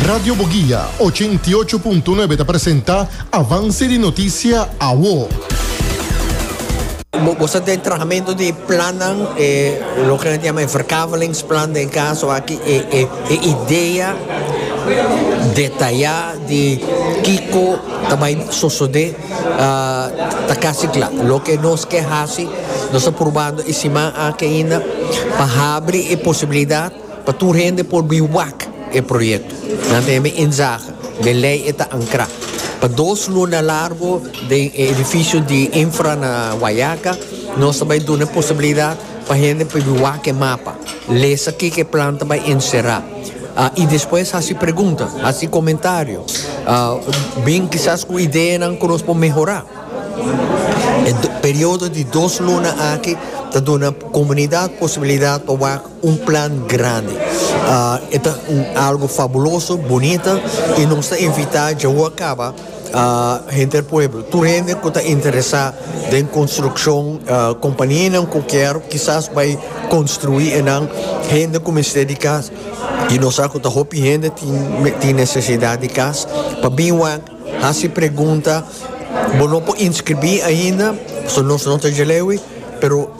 Radio Boguia ochenta i ocho punto nuebe ta presenta Avance di Noticia Awo. Bo sa den trahamentu di plannan, e loke nan ta yama e verkavelingsplan den kaso aki, e e e idea detayá di kiko ta bai sosodé ta kasi kla. Loke nos ke hasi, nos ta probando e siman aki ainda pa habri e posibilidat. Pa tur hende por bin wak e proyekto, nan ta hebe inzage den lei e ta ankrá pa dos luna largo den e edifisio di Infra na Guayaca. Nos ta bai duna e posibilidat pa hende por bin wak e mapa, lesa kiko e plan ta bai enserá i despues hasi pregunta, hasi komentario, bin kisas ku ideanan ku nos por mehorá. E periodo di dos luna aki ta duna komunidat posibilidat pa wak Un plan grandi. E ta un algo fabuloso, bunita y nos ta invita djawoa caba henter pueblo, tur hende cu ta interesa den construccion, companianan cu kier kisas bay construi enan, hende cu mester di cas y nos sa cu ta hopi hende tin necesidad di cas pa bin wak haci pregunta. Bo no por inscribi ainda pasobra nos no ta djalewi pero.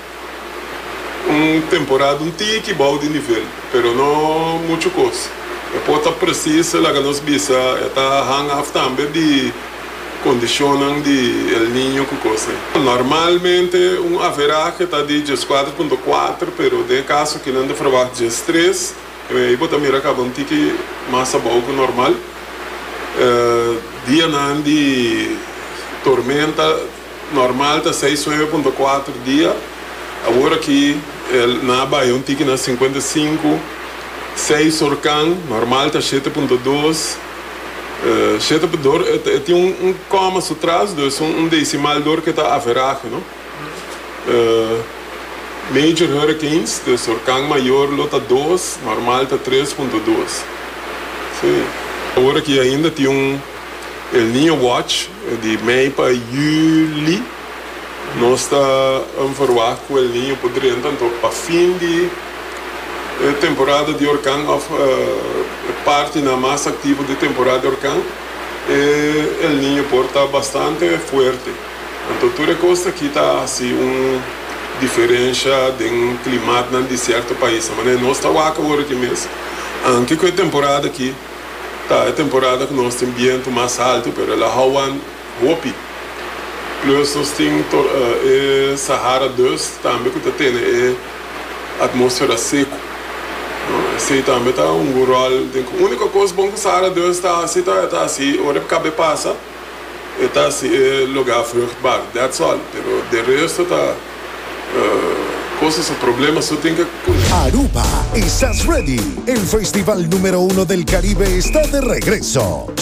un temporada un tiki bou di nivel, pero no muchu kos. E por ta presis laga nos bisa e ta hang af tambe di kondishonnan di El Niño ku kosnan. Normalmente un averaje ta di dieskuater punto kuater, pero den e kaso aki nan ta ferwagt diestres, ei bo ta mira kaba un tiki mas abou ku normal. Dianan di tormenta Normal ta seis nueve punto kuater dia, awor aki el na bai un tiki na sinkuenta sinku. Seis horkan, normal ta shete punto dos. Shete punto dor e tin un koma su tras, dus un desimal dor ke ta averahe, no? Major hurricanes, dus horkan mayor lo ta dos, normal ta tres punto dos. Awor aki ainda tin un. El Niño Watch di mei pa juli. Nos ta verwagt cu El Niño por drenta anto pa fin di e temporada di orkan of e partinan mas activo di temporada di orkan e El Niño por ta bastante fuerte. Anto tur e cos taki ta haci un diferencia den climatnan di cierto paisnan. Manera nos ta wak awor aki mes anke cu e temporada aki. Ta e temporada ku nos tin bientu mas altu, pero el a houan hopi. Plus nos tin e Sahara dust tambe ku ta tene e atmosfera seku. Esei tambe ta hunga un ròl. Uniko kos bon ku Sahara dust ta hasi ta e ta hasi ora e kab'é pasa. e ta haci e lugar vruchtbaar that's all pero de resto ta cosas problema su tin ke cuna. Aruba, Estás Ready? El festival numero uno del Caribe está de regreso!